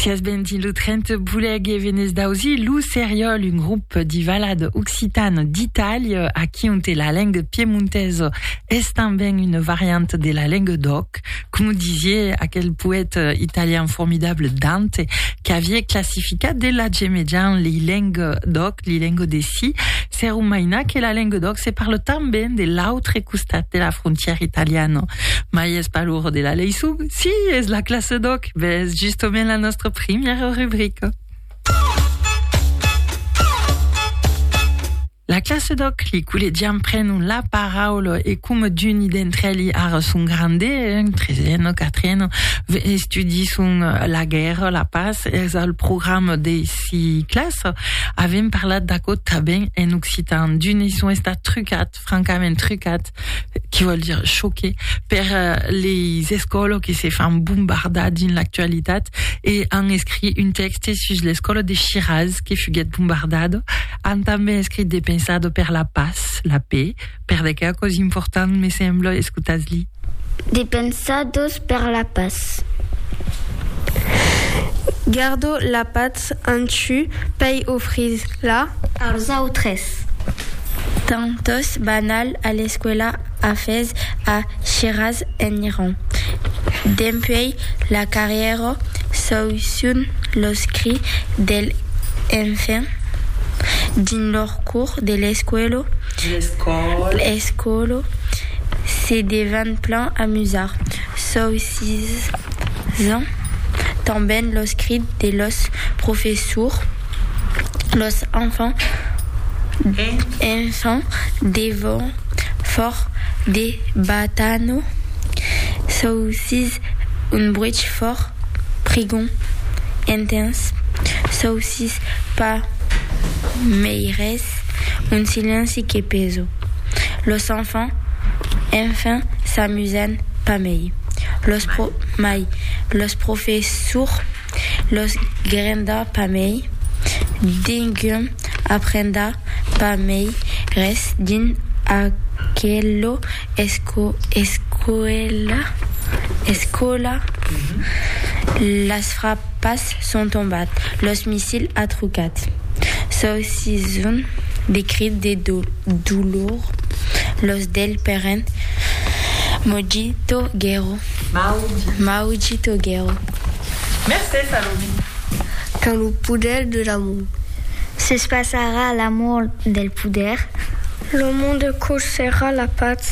Sias bentin lo trent buleg e venez d'ausi lo Seriol, un grup di valad occitan d'Italia a qui onte la lenga piemontesa es tanben una variant de la lenga d'òc, com disie aquel poèta italian formidable Dante, qu'avie classificat de la gemejant li lenga d'òc, li lenga de si, Se rumaina que la Lenguedoc se parle tanben de l'autre costat de la frontièra italiana. Mai es pas l'ora de la lei sub? Si, es la classe d'oc! Ves justament la nostra primièra rubrica. La classe d'oc, li collegians prenon la paraula e coma d'uni d'entre elli ara son grande, en tresena, quatrena, estudisson la guèrra, la pas, es al programa de ciclas avem parlat d'aquò tanben en occitan d'un son estat trucat francament trucat qui vol dire choqué per euh, les escoles qui se fan bombardar dins l'actualitat e an escrit un texte sus l'escola de Shiraz que fuguet bombardado han tanben escrit de pensado per la pas la paix Per de qué aquò's important, me sembla, escotatz-li. De Pensadors per la patz. Gardo la patz en chu pei ofrir la. Als autres. Tantos banal a l'escuela a fes a Shiraz en Iran. Dempuei la carrièra s'aucion los cris del enfant dins lor cour de l'escuela. J'escòlo. Escòlo. Se devan plan amusar. Soi sis ans. Tanben los crits de los professors. Los enfants. Enfants. Devon fòrt de batano. Soi sis un bruch fòrt, prigon, intens. Soi sis pas mei res. Res. Un silenci que peso. Los enfants, enfin, s'amusan pas mei. Los pro. Mai. Los professurs los grenda pas mei. Dengum aprenda pas mei res dins aquelo esco. Escola. Escola. Las frapas. D'Ièlets son tombat, los missils a trucat. S'ausisson de crits de dolor, los del peren Mojito Guero, Maujito Guero. Mercés a lo vin. Quand lo poder de l'amor. S'espaçarà l'amor del poder. Lo monde cousherà la patz.